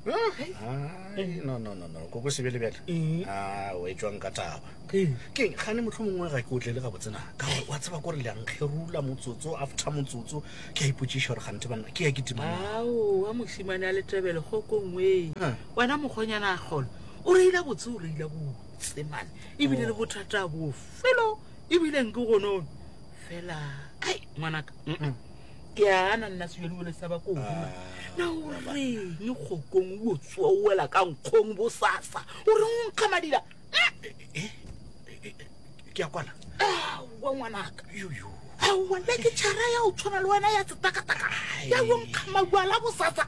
Ai, no no no no ko ko sebele bjale Ee. a o etswang ka taba Ee. keng gane motlho mongwe ga ke o tlele gabotsena ka gore wa tseba kore leankgerula motsotso after motsotso ke a ipotsiša gore gante banna ke ya ke timana aowa mošimane a letebele kgokongwee Ah. wena mokgonyana a kgolo o reila botse o reila botse mane ebile le bothata bofelo ebile nke gonono fela ai ngwanaka mm-mm. ke a gana nna sebjadibone sa bako gona na o reng kgokong o tsoa o wela ka nkgong bosasa o reng o nkga madila ke a kwana aowa ngwanaka aowa nna ke tšhara ya o tshwana le wena ya tsetakataka ya yo nkga mabuala bosasa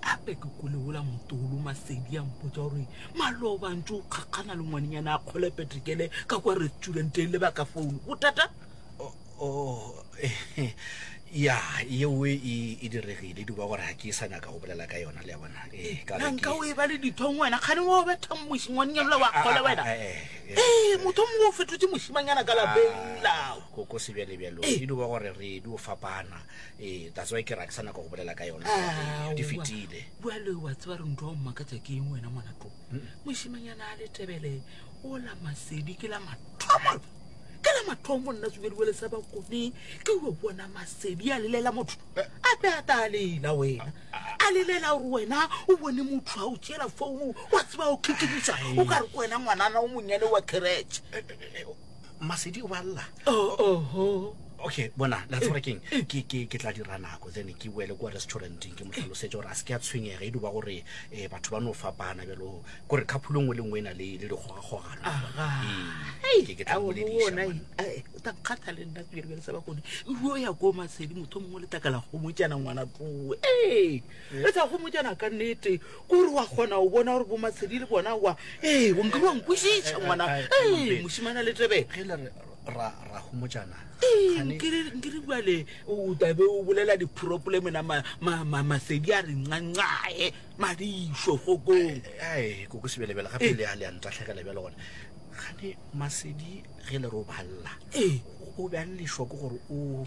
Gape ke kwele wola motolo Masedi a mpotsa gore Maloba ntse o kgakgana le ngwanenyana a kgole Petrikele ka kwa restauranteeng le baka founu. Bothata? Oh, ya, yeo e, e diregile. Duba gore ga ke sa nyaka go bolela ka yona, le a bona. Eh, ka Na nka o e ba le dithong wena? Kgane wa o betha moši ngwanenyana ola wa kgole ah, wena? Eh, eh, eh motho mongwe o fetotse mošimanyana ka lapeng lao. Koko sebjalebjalo, e duba gore re di o fapana. ee that's why ke ra ke sa nako go bolela ka yona Ah, di wa- fetile bjale wa tseba re ntwa o mmakatša ke eng wena ngwana to mošimanyana a le tebele o la masedi ke la mathomo ke la mathomo nna tsubediwele sa bakone ke yo bona masedi a lelela motho Eh. a be a ta a lela wena a lelela gore wena o bone motho a o tšela founu wa tseba o kikimisa o ka re ke wena ngwanana o monnyane wa keretšhe masedi o ba lla oh, oh, oh. okay bona la tsore keng ke ke ke tla dira nako then ke boele kwa restauranteng ke motlhalosetse gore a se ke a tshwenyega e duba gore um batho ba no fapana bjalo kore kgaphulo nngwe le nngwe e na le le dikgogakgogano takgata le nna pele bjale sa ba kone o ya ko masedi motho mongwe le takala gomotjana ngwana tloe e tsa gomotjana ka nnete Ko re wa kgona o bona gore bo matshedi le bona wa ee o nke wa nkwešiša ngwana ee mošimana le tebele ge le re ra ra homojana nkere bjale o tabe o bolela dipropole mena masedi a re ncancae madišo kgokong ae koko sebelebele gape le a le a ntatlhegela bjale gone gane masedi ge le re o balela o be a lešwa ke gore o